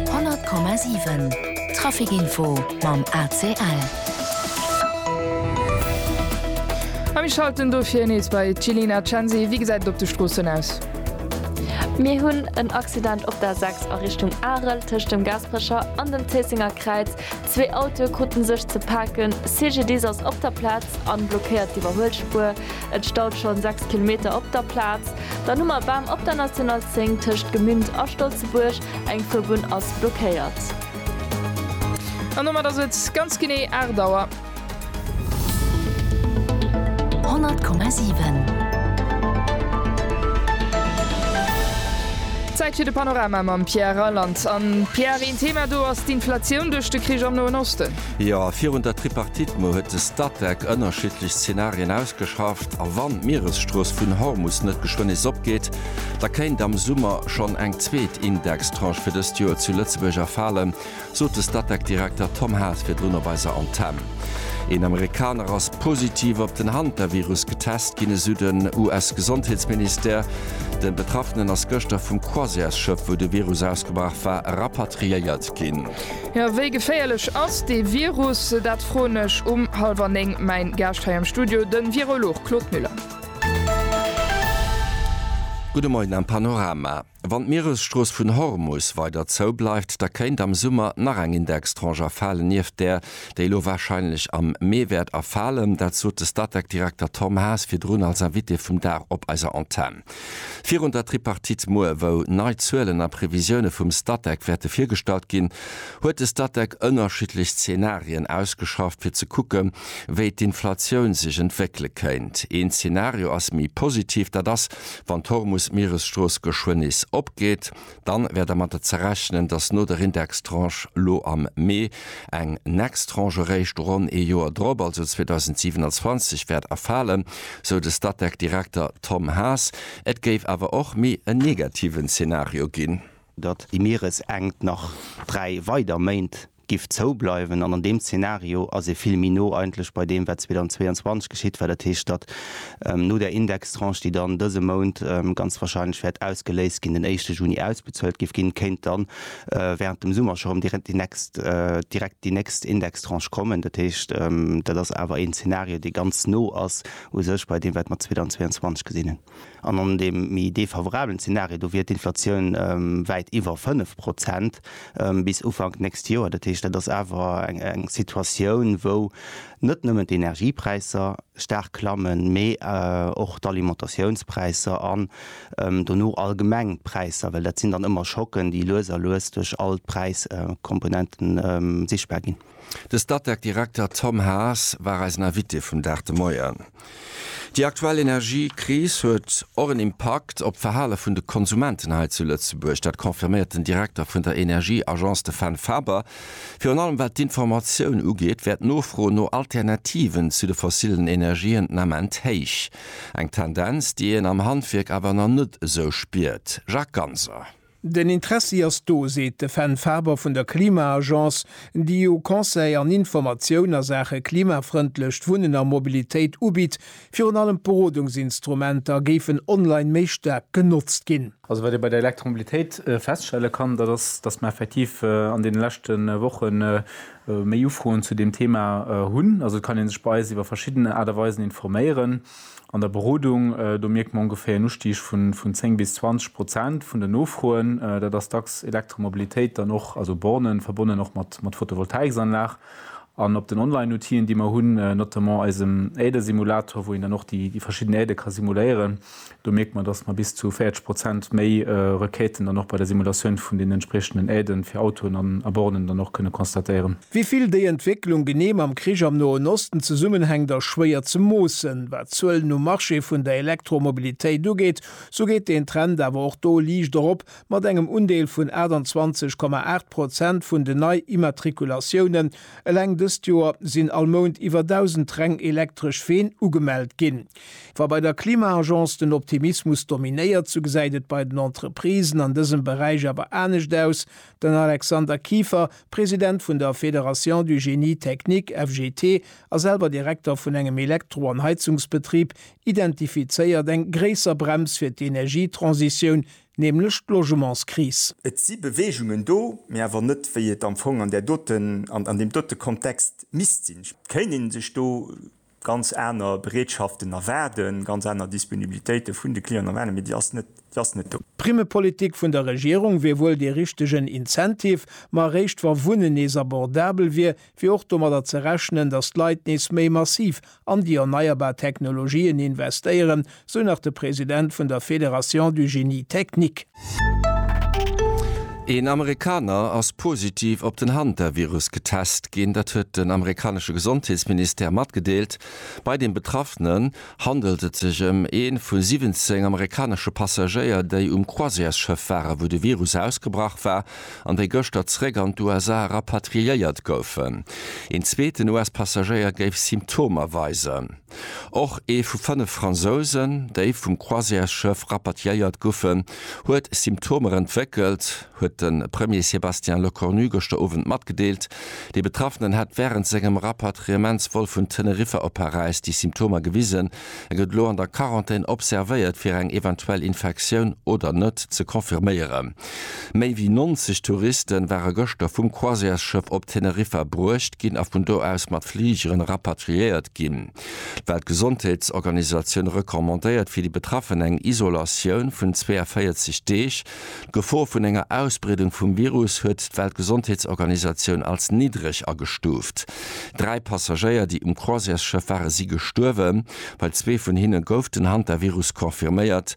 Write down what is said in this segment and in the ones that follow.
100,7 Traficinfo mam ACL. A mir schalten dofir nees bei d'Jillian Cenzi. Wéi gesäit et op de Stroossen aus? Mir hunn en Accident op der 6 a Richtung Arel tëscht dem Gaasperecher an dem Zéissenger Kräiz. Zwee Autoe kruten sech ze paken. CGDIS ass op der Plaz an blockéiert d'Iwwerhuelspuer. Et staut schonn 6 Kilometer op der Plaz. Dann hu mer Bam op der National 10 tëscht Gemünd a Stolzebuerg, eng Fuerbunn ass blockéiert. An domat ass et ganz genee 8 Auer. 100,7. Zäit fir de Panorama mam Pierre Reyland. An, Pierre, een Thema do ass d'Inflatioun duerch de Krich am Noen Osten. Jo, virun der Tripartite Mo huet de Statec ënnerschiddlech Zenarien ausgeschafft a wann d'Mieresstrooss vun Hormus net geschwënn nees opgeet, da kéint am Summer schonn eng zweet Indextranche fir dëst Joer zu Lëtzebuerg erfalen, sot de Statec-Direkter Tom Haas virdrun op eiser Antenn. Een Amerikaner ass positiv op den Hantavirus getest ginn, esou den US-Gesondheetsministère. De Betraffenen ass gëschter vum Croisièresschëff, wou de Virus ausgebraach war, rapatriéiert ginn. Jo, wéi geféierlech ass dee Virus? Dat froen ech um hallwer néng mäin Gaascht hei am Studio, den Virolog Claude Müller. Gudde Moien am Panorama. Wann d'Mieresstrooss vun Hormus weider zou bleift, da kéint am Summer nach eng Indextranche erfalen, nieft där, déi elo warscheinlech am Mee wäert erfalen. Dat sot de Statec-Direkter Tom Haas virdrun als Invité vum Dag op eiser Antenn. Virun der Tripartite muer, wou nei Zuelen a Previsioune vum Statec wäerte virgestallt ginn, huet de Statec ënnerschiddlech Zenarien ausgeschafft, fir ze kucke wéi d'Inflatioun sech entwéckele kéint. Een Zenario ass méi positiv, dat ass, wann d'Hormus-Mieresstrooss geschwënn nees opgeet. dann wär dermatter ze rechnen, dass no der Indextranche lo am Mee eng next Tranche eréischt ronn ee Joer drop, also 2027, wäert erfalen, sou de Statec-Direkter Tom Haas. Et géif awer och méi en negativen Zenario ginn. datt déi Mieresenkt nach dräi weider Méint giff zou bleiwen an an deem Zeenario ass ee vill méi no eigentlech bei deem wat 2022 geschitt war, dat heescht datt no där Indextranche déi dann dëse Mount ganz wahrscheinlech wäert ausgeléist ginn, den éischte Juni ausbezuelt giff ginn, kéint dann während dem Summer scho rëm direkt déi nächst direkt déi nächst Indextranche kommen. Dat heescht dat ass awer een Zeenario dee ganz no ass u sech bei deem wat mer 2022 gesinn hunn. An an deem méi defavorablen Zenario, do wier d'Inflatioun wäit iwwer 5 Prozent bis Ufank d'nächst Joer. Dat heescht, dat ass awer eng Situatioun, wou net nëmmen d'Energiepräisser staark klammen, mee och d'Alimentatiounspräisser an dono allgemeng d'Präisser, well dat sinn dann ëmmer Schocken, déi lues a lues duerch all d'Präiskomponenten sichtbar ginn. De Statec Direkter Tom Haas war eisen Invité vum Dag de Moien. Déi aktuell Energiekris huet och en Impakt op d'Verhale vun de Konsumenten hei zu Lëtzebuerg. Dat confirméiert den Direkter vun der Energieagence de Fenn Faber. Virun allem wat d'Informatioun ugeet, wär d'Nofro no Alternativen zu de fossillen Energien den Ament héich. Eng Tendenz, déi een am Handwierk awer nach net esou spiert. Jacques Ganser. Den Interessi ass do, seet de Fenn Faber vun der Klima-Agence, déi jo Conseil an Informatioun a Saache klimafrëndlecht Wunnen a Mobilitéit ubitt. Virun allem d'Berodungsinstrumenter géifen online méi staark genotzt ginn. Also wat ee bei der Elektromobilitéit feststelle kann, dat ass, datt mer effektiv an deene leschte Woche méi Ufroen zu deem Thema hunn. Also et kann ee sech bei eis iwwer verschidden Aart a Weisen informéieren. An der Berodung, do mierkt mer ongeféier en Ustig vun 10 bis 20 Prozent vun den Nofroen. Dat ass dacks Elektromobilitéit, dann och, also Bornen, verbonnen och mat Photovoltaiksanlag. An op den Online-Outien, déi mer hunn, notamment eisem Äerdesimulator, wou een dann och déi verschidden Äerde ka simuléieren, do mierkt mer, dass mer bis zu 40 Prozent méi Requêten dann och bei der Simulatioun vun den entspriechenden Äerde fir Autoen a Bornen dann och kënne constatéieren. Wéi vill déi Entwécklung genee mam Krich am Noen Osten zesummenhänkt ass schwéier ze moossen. Wat d'Zuelen um Marché vun der Elektromobilitéit ugeet, sou geet deen Trend awer och do liicht erop, mat engem Undeel vun 28, 8 Prozent vun den Nei-Immatrikulatiounen. Eleng dëst Joer sinn all Mount iwwer 1.000 reng elektresch Ween ugemellt ginn. Wa bei der Klima-Agence den Optimismus dominéiert, sou gesäit et bei den Entreprisen an dësem Beräich awer anescht aus. Den Alexander Kieffer, President vun der Fédération du Génie Technique, FGT, a selwer Direkter vun engem Elektro an Heizungsbetrib, identifizéiert eng gréisser Brems fir d'Energietransitioun, nämlech d'Logementskris. Et si Beweegungen do, mee awer net, wéi et am Fong an där doten, an deem dote Kontext misst sinn. Et kéint ee sech do ganz aner Bereetschaften erwaarden, ganz aner Disponibilitéite vun de Clienten erwaarden, mee déi ass net, déi ass net do. D'Primmepolitik vun der Regierung wier wuel dee richtegen Incentive, ma eréischt wa Wunnen nees abordabel wier, wier och domadder ze rechnen, datt d'Leit nees méi massiv an déi erneierbar Technologien investéieren, Sou nach de President vun der Fédération du Génie Technique. Een Amerikaner ass positiv op den Hantavirus getest ginn. Dat huet den amerikanesche Gesondheetsministère matgedeelt. Bei deem Betraffenen handelt et sech ëm ee vu 17 amerikanesche Passagéier, déi um Croisièresschëff waren, wou de Virus ausgebrach war, an déi gëschter zeréck an d'USA rapatriéiert goufen. Een zweeten US-Passagéier géif Symptomer weisen. Och ee vu fënnef Fransousen, déi vum Croisièresschëff rapatriéiert goufen, huet Symptomer entwéckelt, huet de Premier Sébastien Lecornu gëschter Owend matgedeelt. Dee Betraffenen hätt wärend sengem Rapatriementsvol vun Teneriffa op Paräis déi Symptomer gewisen. E gëtt elo an der Quarantän observéiert, fir eng eventuell Infektioun oder net ze confirméieren. Méi wéi 90 Touriste ware gëschter vum Croisièresschëff op Teneriffa bruecht ginn a vun do aus mat Fligeren rapatriéiert ginn. D'Weltgesondheetsorganisatioun recommandéiert fir déi Betraffen eng Isolatioun vun 42 Deeg. D'Gefor vun enger Ausbreedung vum Virus huet d'Weltgesondheetsorganisatioun als niddreg agestuuft. Dräi Passagéier, déi um Croisièresschëff waren, si gestuerwen. Bei zwee vun hinne gouf den Hantavirus confirméiert.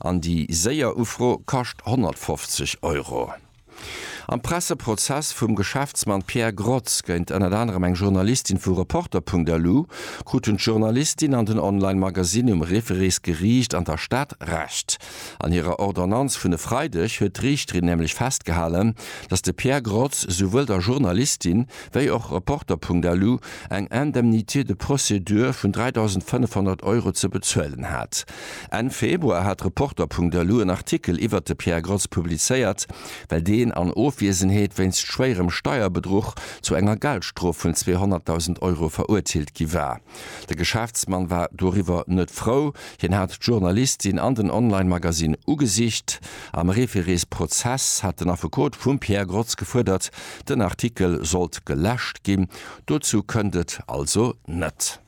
An déi séier Ufro kascht 150 Euro. Am Presseprozess vum Geschäftsmann Pierre Grotz géint ënnert anerem eng Journalistin vu Reporter.lu kruten d'Journalistin an den Online-Magasinn um Refereesgeriicht an der Stad Recht. An hirer Ordonnanz vun e Freideg huet d'Riichterin nämlech festgehalen, datt de Pierre Grotz souwuel der Journalistin wéi och Reporter.lu eng Indemnité de procédure vun 3.500 Euro ze bezuelen hat. Enn Februar hat Reporter.lu en Artikel iwwert de Pierre Gross publizéiert, well deen an Ofwiesenheet wéinst schwéierem Steierbedruch zu enger Geldstrof vun 200.000 Euro verurteelt gi war. De Geschäftsmann war doriwwer net frou. Hien hat d'Journalistin an den Online-Magasinn ugesicht. Am Référés-Prozess hat den Affekot vum Pierre Grotz gefuerdert, den Artikel sollt geläscht ginn. Dozou kënnt et also net.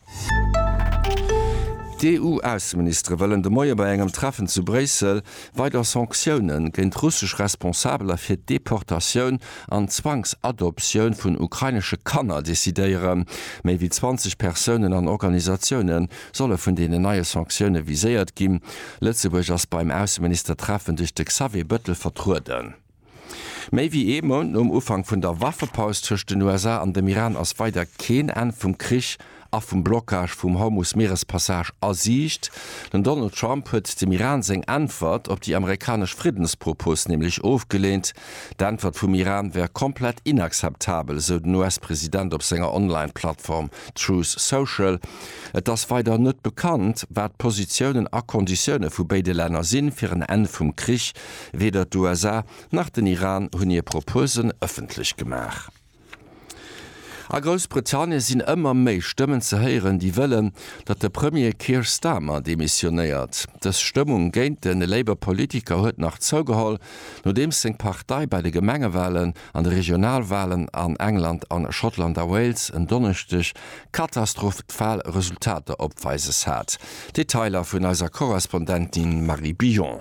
D'EU-Ausseministere wëllen de Moie bei engem Treffen zu Bréissel weider Sanktioune géint russesch Responsabeler fir d'Deportatioun an d'Zwangsadoptioun vun ukrainesche Kanner decidéieren. Méi wéi 20 Persounen an Organisatioune solle vun deenen neie Sanktioune viséiert ginn. Lëtzebuerg ass beim Ausseministertreffen duerch de Xavier Bettel vertrueden. Méi wéi ee Mount nom Ufank vun der Waffepaus tëscht den USA an dem Iran ass weider keen Enn vum Krich a vum Blockage vum Hormus-Mierespassage a Siicht. Den Donald Trump huet dem Iran seng Äntwert op déi amerikanesch Friddenspropos nämlech ofgeleent. D'Äntwert vum Iran wär komplett inakzeptabel, esou den US-President op senger Online-Plattform Truth Social. Et ass weider net bekannt, wat d'Positiounen a Konditioune vu béide Länner sinn, fir en Enn vum Krich Weder d'USA nach den Iran hunn hir Proposen ëffentlech gemaach. A Groussbritannien sinn ëmmer méi Stëmmen ze héieren, déi wëllen, datt de Premier Keir Starmer demissionéiert. Dës Stëmmung géint de Labour Politiker huet nach zougeholl, nodeems seng Partei bei de Gemengewalen an de Regionalwalen an England a Schottland a Wales en Donneschdeg katastrophal Resultater opweises hat. Detailer vun eiser Korrespondentin Marie Billon.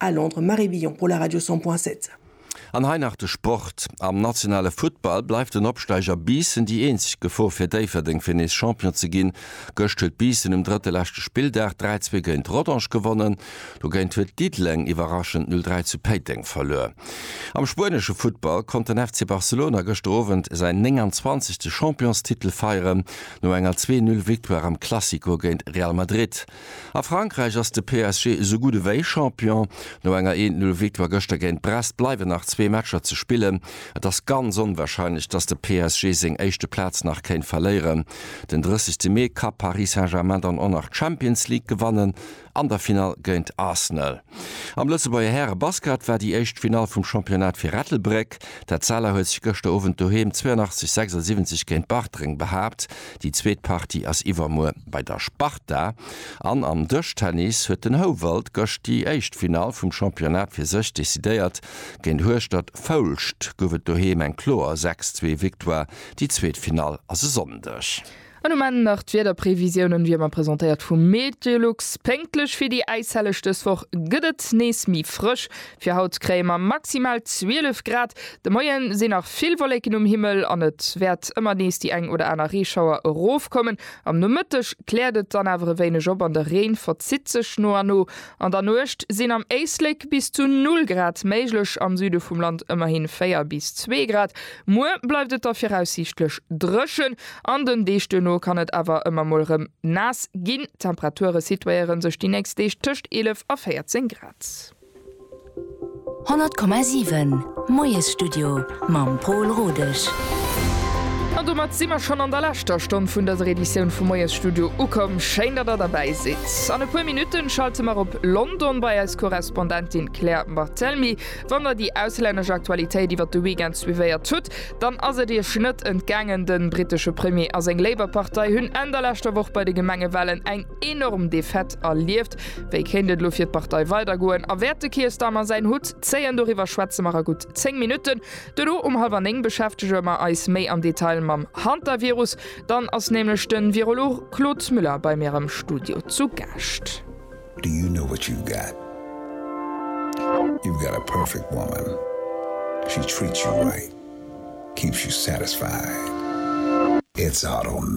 A Londres, Marie Billon pour la Radio 100 point 7. An hei nach de Sport, Am nationale Futtball bleift den Opsteiger Biissen déi eenzeg Gefor fir Déifferdeng fir nees Champion ze ginn. Gëscht huet Biissen um drëtte leschte Spilldag 3, 2 géint Rodange gewonnen. Dogéint huet Diddeleng iwwerraschend 0, 3 zu Péiteng verluer. Am spuenesche Futtball konnt den FC Barcelona gëschter Owend säin 29. Championstitel feieren, no enger Zwee-Null-Victoire am Classico géint Real Madrid. A Frankräich ass de PSG esou gutt ewéi Champion. No enger Eent-Null-Victoire gëschter géint Brest bleiwen nach zwee Matcher ze spillen. Et ass ganz onwarscheinlech, datt de PSG seng éischte Plaz nach kéint verléieren. Den 30 Mee ka Paris Saint-Germain dann och nach d'Champions League gewannen, an der Finall géint Arsenal. Am Lëtzebuerger Häre-Basket war déi éischt Finall vum Championnat fir Ettelbréck. D'Etzella huet sech gëschter Owend doheem 82, 76 géint Bartreng behaapt. Déi zweet Partie ass iwwermuer bei der Sparta an am Dëschtennis huet den Houwald gëscht déi éischt Finall vum Championnat fir sech decidéiert. Géint Hueschtert Foulscht gouf et doheem eng kloer 6, 2 Victoire. Déi zweet Finall ass e Sonndeg. An um Enn nach d'Wiederprevisiounen, wéi ëmmer presentéiert vum Meteolux. Pénktlech fir déi äishelleg dës Woch gëtt et nees méi frësch. Fir haut kréie mer maximal 12 Grad. De Moie sinn nach vill Wolleken um Himmel an et wäert ëmmer nees déi eng oder aner Reeschauer erofkommen. Am Nomëtteg kläert et dann awer e wéineg op an de Reen verzitt sech no a no. An der Nuecht sinn am Éislek bis zu 0 Grad méiglech, am Süde vum Land ëmmerhi 4 bis 2 Grad. Muer bleift et da viraussiichtlech dréchen an den Deeg duerno kann et awer ëmmer mol rëm naass ginn. D'Temperature situéiere sech déi nächst Deeg tëscht 11 a 14 Grad. 100,7 Moiesstudio mam Pol Rodesch. An domat si mer schonn an der leschter Stonn vun dëser Editioun vum Moiesstudio ukomm. Schéin, datt der derbäi sidd. An e puer Minutten schalte mer op London bei eis Korrespondentin Claire Barthelmy. Wann der déi auslännesch Aktualitéit iwwert de Weekend suivéiert hutt, dann ass et Iech net entgaangen, de brittesche Premier a seng Labour-Partei hunn Enn der leschter Woch bei de Gemengewalen eng Enorm Defaite erlieft. Wéi kéint et elo fir d'Partei weidergoen a wäert de Keir Starmer säin Hutt zéien? Doriwwer schwätze mer a gutt 10 Minutten. Duerno um hallwer 9 beschäftege mer eis méi am Detail mam Hantavirus. Dann ass nämlech de Virolog Claude Müller bei mir am Studio zu Gaascht. Do you know what you've got? You've got a perfect woman. She treats you right, keeps you satisfied. It's autumn.